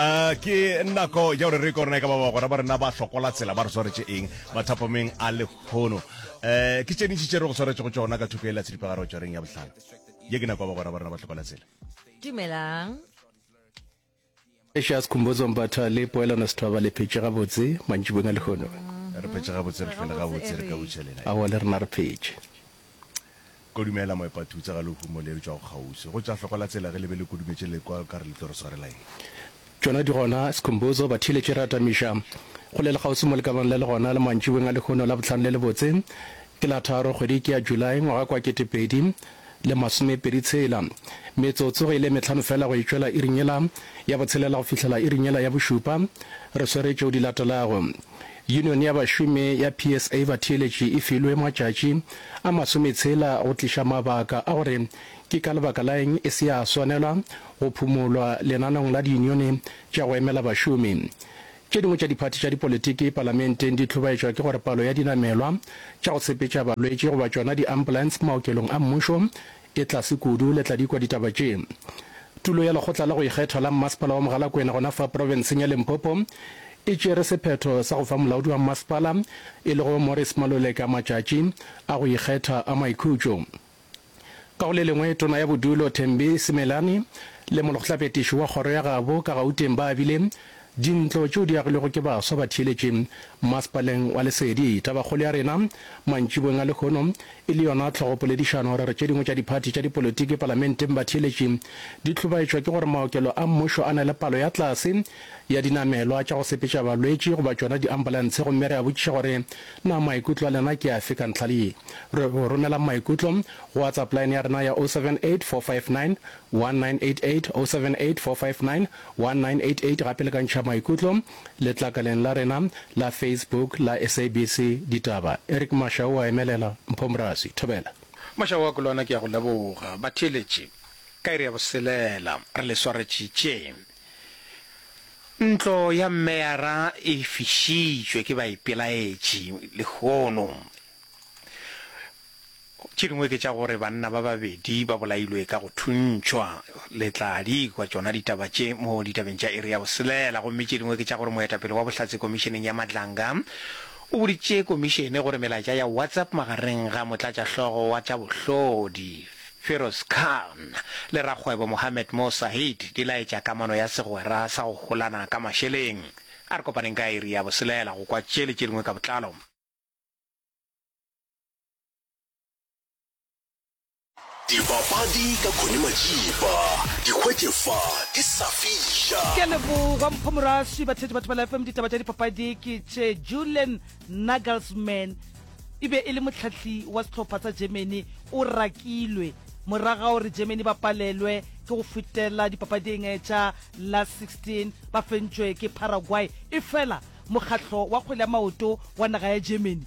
Uh, ke nako ya gore re korona e ka ba bagora ba rena ba hlokola tsela ba re swaretše eng mathapameng a lekgono um ke tšenitši tše re go swaretše go tšona ka thoko e la tshedipagare go tšwareng ya bohlano ye ke nako ya bagora ba rena ba hlokola tsela dumelang Precious Khumbudzo Mbatha le poelano sethwaba le phetše gabotse mantšibong a lehono. Re phetše gabotse re hlwele gabotse re ka butšha lena. Awa le rena re phetše. Kodumela moepatutsa ga lehumo le eupša o kgauswi. Go tša hloko la tsela ge le be le kodumetše lekwa o ka re le tlo re swarela eng? Tšona di gona, Sikhumbuzo, ba theeletše re atamiša. Go le lekgauswi mo le ka bang le le gona le mantšiboeng a lehono la bohlano le lebotse. Ke la tharo, kgwedi ke ya July, ngwaga ke wa ketepedi le masomepedi tshela. Metsotso ge e le e mehlano feela go e tšwela iring yela ya botshelela go fihlela iring yela ya bošupa, re swere tšeo di latelago. Union ya bašomi ya PSA batheeletši e filwe matšatši a masometshela go tliša mabaka a gore ke ka lebaka la eng e se ya swanelwa go phumolwa lenaneong la diunione tša go emela bašomi. Tše dingwe tša diphathi tša dipolitiki palamenteng di hlobaetšwa ke gore palo ya dinamelwa tša go sepetša balwetši goba tšona di-ambulance maokelong a mmušo Ke tlase kudu le tla di kwa ditaba tše. Tulo ya Lekgotla la go Ikgetha la Mmasepala wa Mogalakwena gona fa profenseng ya Limpopo e tšere sephetho sa go fa molaodi wa mmasepala e lego Morris Maluleka matšatši a go ikgetha a maikhutšo. Ka go le lengwe, Tona ya Bodulo Thembi Simelane le molgtlapetiši wa kgoro ya gabo ka Gauteng ba abile Dintlo tšeo di agilwego ke baswa ba theeletše Masepaleng wa Lesedi, Tabakgolo ya rena, mantšiboeng a lehono, e le yona tlhogopoledišano gore tše dingwe tša diphathi tša dipolotiki palamenteng batheeletši di hlobaetšwa ke gore maokelo a mmušo a na le palo ya tlase ya dinamelwa tša go sepetša balwetši goba tšona diambulantshe gomme re a botšiša gore na maikutlo a lena ke afe ka ntlha ye. Re go romelang maikutlo go WhatsApp line ya rena ya 078 459 1988, 078 459 1988 gape le ka ntšha maikutlo letlakaleng la rena la Facebook la SABC Ditaba. Eric Mashau o a emelela. Mpho Morasi. Thobela. Mashau a Kolwana ke a go leboga. Batheeletši, ka iri ya boselela re le swaretšitše. Ntlo ya Meyara e fišitšwe ke baipelaetši lehono. Tše dingwe ke tša gore banna ba babedi ba bolailwe ka go thuntšhwa. Le tla di kwa tšona ditaba tše mo ditabeng tša iri ya boselela. Gomme tše dingwe ke tša gore moetapele wa bohlatse Komišeneng ya Madlanga o boditše Komišene gore melaetša ya WhatsApp magareng ga motlatšahlogo wa tša bohlodi Feroz Khan le rakgwebo Mohammed Mo Saeed di laetša kamano ya segwera sa go holana ka mašeleng. A re kopaneng ka iri ya boselela go kwa tše le tše dingwe ka botlalo. Dipapadi ka Connie Majiba, di hwetše fa di sa fiša. Ke a leboga Mpho Moraswi, batheetši batho ba la FM. Ditaba tša dipapadi ke tše Julian Nagelsmann e be e le mohlahli wa sehlopha sa Germany o rakilwe moraga gore Germany ba palelwe ke go fetela dipapading tša la 16 ba fentšwe ke Paraguay efela mokgahlo wa kgwele ya maoto wa naga ya Germany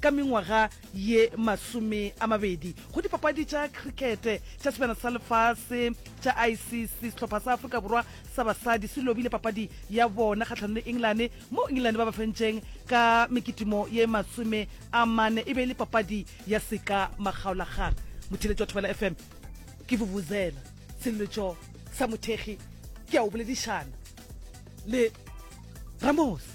ka mengwaga ye masome a mabedi go dipapadi tša crickete tša sebjana sa lefase tša ICC, sehlopha sa Afrika Borwa sa basadi se lobile papadi ya bona kgahlanong le England moo England ba ba fentšeng ka mekitimo ye masome a mane e be e le papadi ya seka makgaolakgang. Motheeletši wa Thobela FM ke Vuvuzela Seleletšo sa Mothekgi ke a o boledišana le Ramose.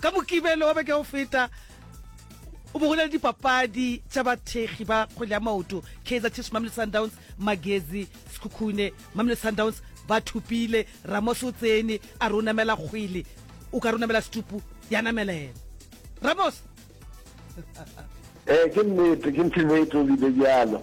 Ka Mokibelo wa beke o feta, o be go na le dipapadi tša bathekgi ba kgwele ya maoto, Kaizer Chiefs Mamelodi Sundowns, Magezi Sekhukhune. Mamelodi Sundowns ba thopile, Ramos o tsene a re o namela kgwele, o ka re o namela setupu, ya namela yena. Ramos! Ee, ke nnete, ke nnete o bile bjalo.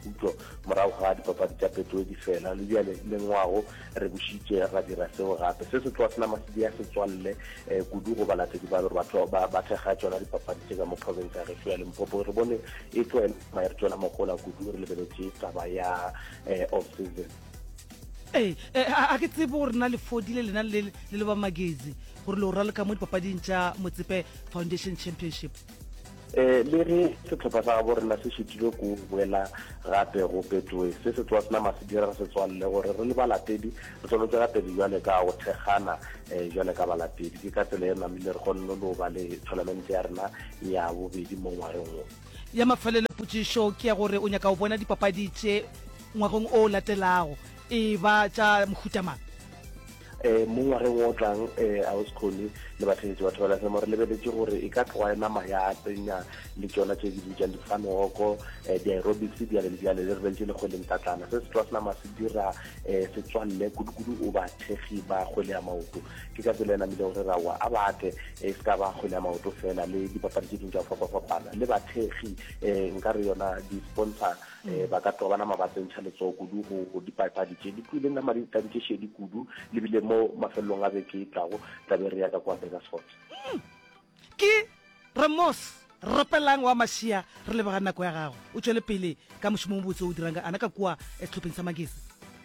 Khutšo, Morago ga dipapadi tša Betway di fela, le bjale le ngwago re bušitše ra dira seo gape. Se se tlo sna masidi a setswalle kudu go balatedi ba ba tlo ba ba thekga tšona dipapadi tše ka mo profense ya gešo ya Limpopo. Re bone e tlo ema e re tšwela mohola kudu re lebeletše taba ya off season. Ee, ee, a, a ke tsebe gore na le fodile lena le le ba magezi gore le go raloka mo dipapading tša Motsepe Foundation Championship. um le ge setlhopha sa gabo rena se šetile ko boela gape go petoe se se tloa senama se dira re se tswalle gore re le balatedi re swanetse gape di jale ka go thekgana um jale ka balatedi ke ka tsela e namile re kgonne le go ba le tournamente ya rena ya bobedi mo ngwageng wo ya mafelelo potšišo ke ya gore o nyaka go bona dipapadi tše ngwageng o latelago e ba tša mohuta mang? um mo ngwageng o tlang um auskgone le batheletše batho ba lasemo re lebeletše gore e ka tloga e nama ya tsenya le tšona tše di bitsang difanoko um eh, di-aerobics bjale le bjale le re beletše le kgweleng tatlana se se tloga se nama se dira um setswalle kudukudu o ba thekgi ba kgwele ya maoto ke ka tsela e namile gore rawa a bate e se ka ba kgwele ya maoto fela le dipapadi tše ding tša go fapafapana le bathekgi um nka re yona di-sponsor um ba ka tloga ba nama ba tsentšha letsogo kudu go dipapadi tše di tlwileng nama di tadi tše šedi kudu le bile mo mafelelong a beke e tlago tla be re ya ka kwa Burgersfort. Ke re Mos. Rapelang wa Mašia re leboga nako ya gago. O tšwele pele ka mošomo o mobotse o o dirang ka ana ka kua sehlopheng sa Magesi.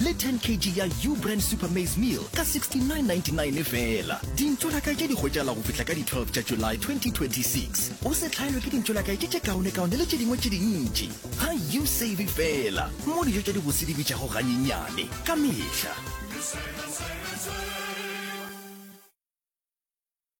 le 10 kg ya Ubrand Super Maize Meal ka 69.99 feela. Dintšolakae tše di hwetšagala go fihla ka di 12 tša July 2026. O se hlaelwe ke dintšolakae tše tše kaonekaone le tše dingwe tše dintši. Ga you save feela mo dijo tša dibose di bitšago ganyenyane ka mehla.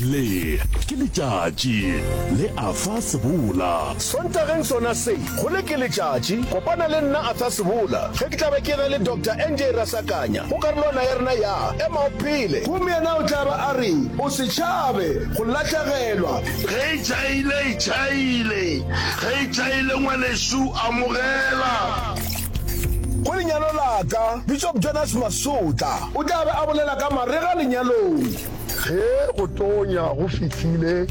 le ke letšatši le afa sebola sontageng sona se go le ke letšatši kopana le nna atha sebola ge ke tlabe ke re le dr nj rasakanya go karolwana ya rena ya ema o phele gomme yena o tlaba a re o se tšhabe go lahlegelwa ge e tšhaile e tšhaile ge e tšhaile ngwanešu amogela Go lenyalo la ka, Bishop Jonas Masotla o tla be a bolela ka marega lenyalong. Ge go tonya go fihlile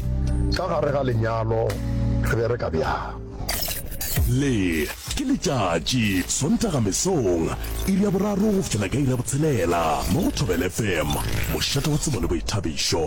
ka gare ga lenyalo, re bereka bjang? Le ke letšatši, Sontaga mesong, iri ya boraro go fihlela ka iri ya botshelela mo go Thobela FM, mošate wa tsebo le boithabišo.